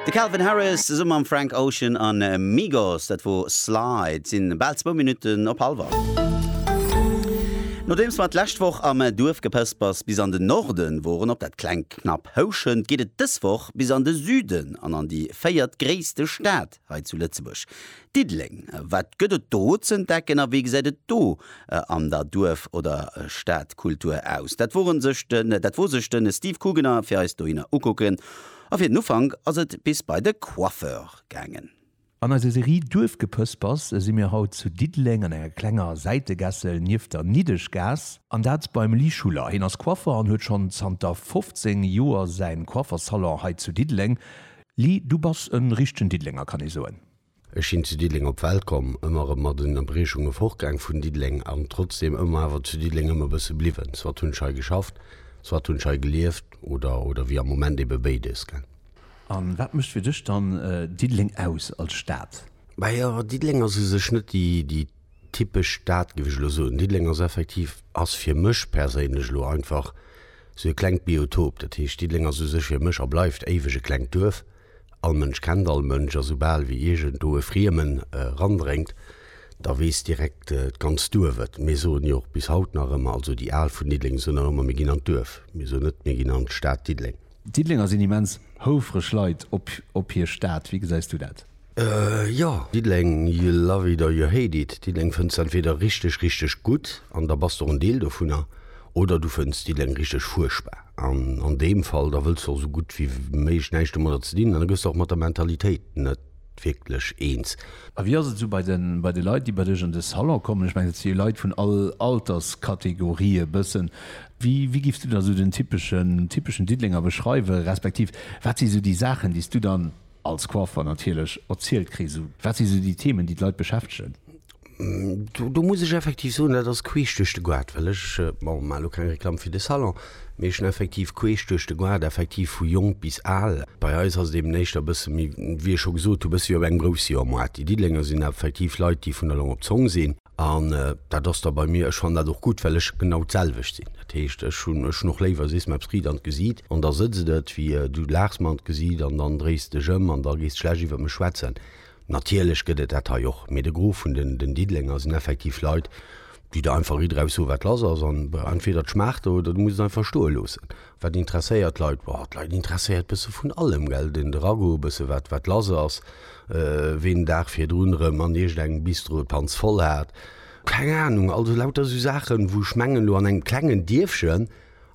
De Calvin Harris zesumme mam Frank Ocean a Migos, dat wor Slide. Et sinn bal zwou Minutten op halwer. Nodeems mer d'lescht Woch am Duerf gepësst bass bis an den Norden woren op dat klengt. Knapp houschend geet et dës Woch bis an de Süden an an déi véiert gréisste Stad hei zu Lëtzebuerg, Diddeleng. Wat gëtt et do z'entdecken a wéi gesäit et do an der Duerf oder Stadkultur aus? Dat wor sech de Steve Kugener fir eis dohinner ukucken a fir den Ufank ass et bis bei de Coiffeur gaangen. An eiser Serie Duerfgepëspers si mir haut zu Diddeleng an enger klenger Säitegässel nieft der Niddeschgaass. An dat beim Lee Schuller. Hien ass Coiffer an huet schonn zanter 15 Joer säin Coifferssalon hei zu Diddeleng. Lee, du bass en richtegen Diddelenger, kann ee soen? Ech sinn zu Diddeleng op d'Welt komm, ëmmer erëm mat Ënnerbriechunge fortgaang vun Diddeleng an trotzdeem ëmmer awer zu Diddeleng ëm e bësse bliwwen. Soit hunn ech hei geschafft, soit hunn ech hei gelieft oder, oder wéi am Moment, ebe béides, gell? A wat mécht fir dech dann Diddeleng aus als Stad? Majo, Diddeleng ass u sech net déi typesch Stad, géif ech elo soen. Diddeleng ass effektiv, ass fir mech perséinlech elo einfach sou e klengt Biotop. Dat heescht, Diddeleng ass u sech fir mech a bleift éiweg e klengt Duerf. All Mënsch kennt all Mënsch a soubal wéi iergendwou e Friemen erandréngt, da weess direkt d'ganzt Duerf et. Mir soen jo och bis haut nach ëmmer, also déi Al vun Diddeleng soen nach ëmmer, mir ginn an d'Duerf. Mir soen net, mir ginn an d'Stad Diddeleng. D'Diddelenger sinn immens houfreg Leit op hir Stad. Wéi gesäis du dat? Jo, Diddeleng, you love it or you hate it. Diddeleng fënns de entweeder richteg, richteg gutt, an da bass de och en Deel dovunner, oder du fënns Diddeleng richteg fuerchtbar. An an deem Fall, da wëlls de och esou gutt wéi méiglech näischt domadder ze dinn hunn, an da gëss de och mat der Mentalitéit net wierklech eens. A wéi ass et esou bei de Leit, déi bei dech an de Salon kommen? Ech mengen, et si jo Leit vun all Alterskategorie e bëssen. Wéi giffs du dann esou den typeschen Diddelenger beschreiwen, respektiv wat si esou déi Saachen, déi s du dann als Coiffeur natierlech erzielt kriss? Wat si esou déi Themen, déi d'Leit beschäftegen? Do muss ech effektiv soen, dat ass queesch duerch de Goart, well ech maachen elo keng Reklamm fir de Salon, mee ech hunn effektiv queesch duerch de Goart effektiv vu jonk bis al. Bei eis ass et eeben éischter e bësse méi, wéi ech scho gesot hu, e bësse wéi op engem Groussjahrmarkt. Déi Diddelenger sinn effektiv Leit, déi vun der Long op d'Zong sinn an dat ass da bei mir, ech fannen dat och gutt, well ech genau d'selwecht sinn. Dat heescht, ech hunn ech hunn och léiwer, sees mer eppes riit an d'Gesiit an da sëtzt et, wéi du laachs mer an d'Gesiit an dann dréis dech ëm an da gees de schlecht iwwer mech schwätzen. Natierlech gëtt et dat hei och, mee de Gros vun den Diddelenger sinn effektiv Leit, déi der einfach ridderhaus soen, wat lass ass. An entweder et schmaacht der oder du muss et einfach stoe loossen. Wat interesséiert d'Leit? Boah, d'Leit interesséiert bësse vun allem, gell. Den de Ragout, e bësse wat, wat lass ass, ween den Dag virdrun erëm an iergendengem Bistro d'Panz voll hat, keng Anung. Also lauter esou Saachen, wou ech mengen, elo an engem klengen Dierfchen,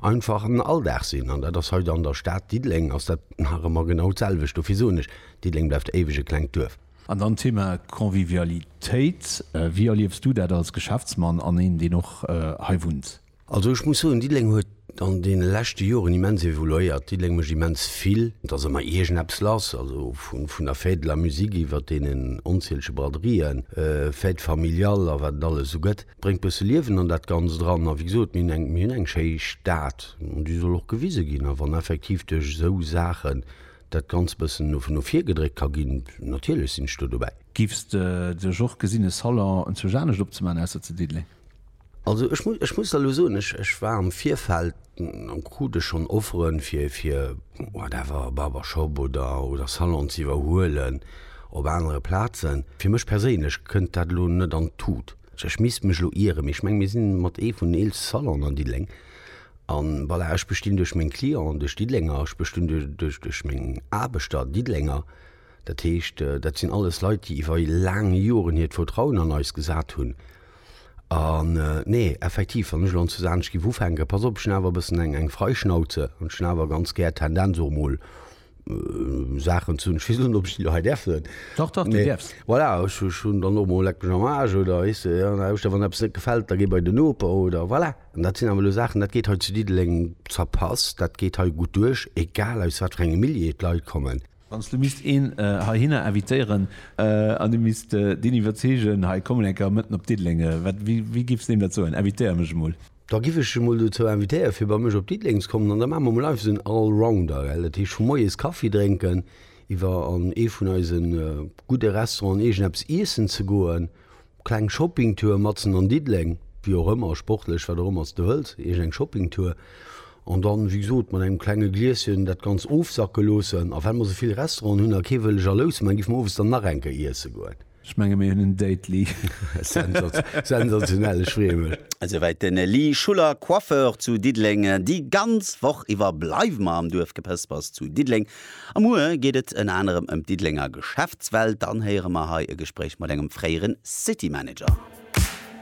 einfach en Alldag sinn. An dat ass hei an der Stad Diddeleng ass dat nach ëmmer genau d'selwecht. Dofir soen ech, Diddeleng bleift éiweg e klengt Duerf. An dann d'Thema Convivialitéit. Wéi erliefs du dat als Geschäftsmann an een, deen och hei wunnt? Also ech muss soen, Diddeleng huet an deene leschte Joren immens evoluéiert. Diddeleng mécht immens vill. Et ass ëmmer iergendeppes lass, also vun der Fête de la musique iwwert deenen onzielege Braderien, Fêtes familiales a wat et alles esou gëtt. bréngt bësse Liewen an dat Ganzt eran. A wéi gesot, mir hunn eng schéi Stad an déi soll och gewise ginn. A wann effektiv duerch esou Saachen dat Ganzt bëssen no vir gedréckt ka ginn, natierlech sinn ech do dobäi. Giffs de duerch och gesinn e Salon zwousch anescht opzemaachen ausser zu Diddeleng? Also ech muss ech muss der elo soen, ech war am Virfeld an krute schonn Offeren fir fir whatever Barbershop oder oder Salon ze iwwerhuelen op anere Plazen. Fir mech perséinlech kënnt dat elo net an d'Tut. Ech misst mech elo ieren, mee ech menge mir sinn mat ee vun den eelste Salonen an Diddeleng. An voilà, ech bestinn duerch meng Clienten, duerch Diddelenger, ech bestinn duerch duerch meng Aarbechter, Diddelenger. Dat heescht, dat sinn alles Leit, déi iwwer laang Joren hiert Vertrauen an eis gesat hunn. An, nee, effektiv, wann ech elo an Zuzaanesch giff ufänken, pass op, ech hunn awer e bëssen eng, eng Freischnauze an ech hunn awer ganz gär d'Tendenz och emol Saachen ze hunn, ech weess net, ob ech déi elo hei däerf soen. Dach, dach, déi däerfs. Voilà, ech, ech hunn dann och emol Leck mech am Aarsch oder, weess de, an der Hauschter, wann eppes net gefält, da géi bei den Noper oder, voilà. An dat sinn awer elo Saachen, dat geet hei zu Diddeleng zerpasst, dat geet hei gutt duerch, egal aus wat fir engem Milieu d'Leit kommen. Wann s du misst een heihinner invitéieren an du misst deen iwwerzeegen, hei kommen eng Kéier mëtten op Diddeleng, wéi giffs deem dat soen? Invitéier mech emol. Da giff ech e mol dozou invitéieren, fir bei mech op Diddeleng ze kommen. An da maache mer emol einfach esou en Allrounder, gell? Dat heescht, vu moies Kaffi drénken, iwwer an ee vun eise gudde Restauranten, iergendeppes iessen ze goen, Kleng Shoppingtour matzen an Diddeleng, wéi och ëmmer, sportlech, wat och ëmmer s de wëlls, iergend eng Shoppingtour. An dann, wéi gesot, mat engem klenge Glieschen dat Ganzt ofsacke loossen. A well mer esou vill Restauranten hunn a kee wëll jalous man, géife mer owes dann nach eng Kéier iesse goen. Ech menge mir hunn en Date-Li. Sensationell, ech freeë mech. Esouwäit den Li Schuller, Coiffeur zu Diddeleng. Déi ganz Woch iwwer bleiwe mer am Duerfgepëspers zu Diddeleng A muer geet et ënner anerem ëm d'Diddelenger Geschäftswelt. Dann héiere mer hei e Gespréich mat engem fréiere City Manager.